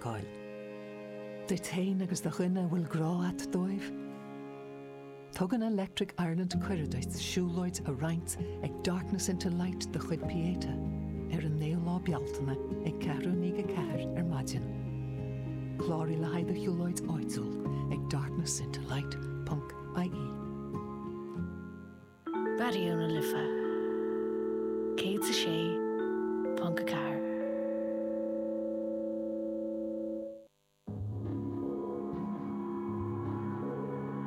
fheiceáil. Duit fhéin agus do dhuine a bhfuil grá a't dóibh. Tugann Electric Ireland cuireadh duit siúlóid a roinnt ag Darkness into Light de chuid Pieta ar an naoú lá Bealtaine ag ceathrú i ndiaidh a ceathair ar maidin. Cláraigh le haghaidh do shiúlóid áitiúil ag darknessintoLight.ie. Raidió na Life 106.4.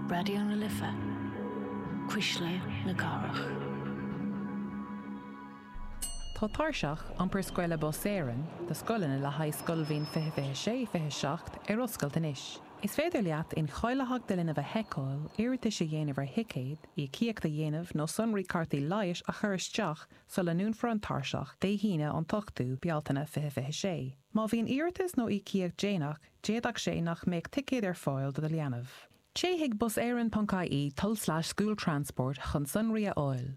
Raidió na Life, Cuisle na Cathrach. Tá tairseach iompair scoile Bus Éireann do scoileanna le haghaidh scoilbhliain 2026, 27 ar oscailt anois. Is féidir leat incháilitheacht do linbh a sheiceáil, iarratais a dhéanamh ar thicéid, íocaíocht a dhéanamh nó sonraí cártaí leighis a chur isteach sula ndúnfar an tairseach, Dé hAoine, an t-ochtú, Bealtaine 2026. Má bhíonn iarratas nó íocaíocht déanach, d'fhéadfadh sé nach mbeadh ticéad ar fáil do do leanbh. Téigh chuig buseireann.ie tulslais school transport chun sonraí a fháil.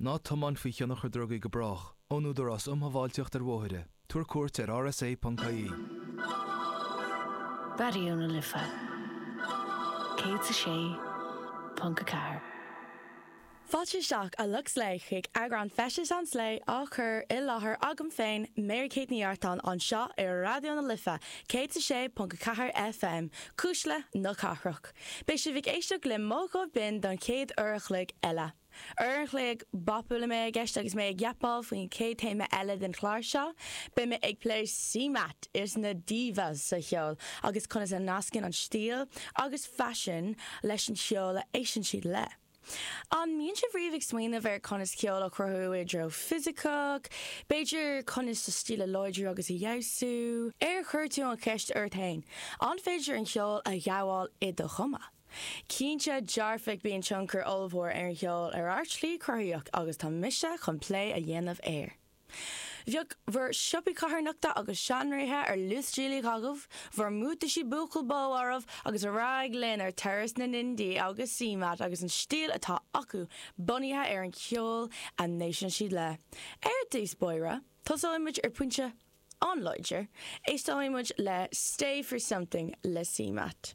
Ná tiomáin faoi thionchar drugaí go brách, ón Údarás Um Shábháilteacht ar Bhóithre, tabhair cuairt ar rsa.ie. Raidió na Life 106.4. Fáilte isteach, a lucht Slay, chuig eagrán feistis an Slay, á chur i láthair agam féin, Mary Kate Ní Artáin, anseo ar Raidió na Life 106.4 FM, Cuisle na Cathrach. Beidh sibh ag éisteacht le mo ghuth binn don chéad uair a chloig eile. Uair an chloig bapúil a mbeidh i gceist agus mé ag yapáil faoin chéad téama eile den chlár seo. Beidh mé ag plé CMAT is na divas sa cheol agus conas a nascann an stíl agus faisean leis an cheol a éisteann siad le. An mbíonn sibh riamh ag smaoineamh ar conas ceol a chruthú i dtreo fisiceach, b'fhéidir conas do stíl a láidriú agus a fheabhsú? Ar chuir tú an cheist ort fhéin, an féidir an cheol a ghabháil i do chuma? Cinnte dearfach bíonn tionchar ollmhór ar an cheol ar ár slí cruthaitheach agus tá mise chun plé a dhéanamh air. Bheadh bhur siopaí carthanachta agus seanréithe ar luasdiailiú agaibh, bhur mbuataisí buachaill bó oraibh agus ar aghaidh linn ar turas na n-indie agus CMAT agus an stíl atá acu bunaithe ar an cheol a n-éisteann siad le. Ar dtús báire tosóimid ar phointe an-láidir, éisteoimid le Stay For Something le CMAT.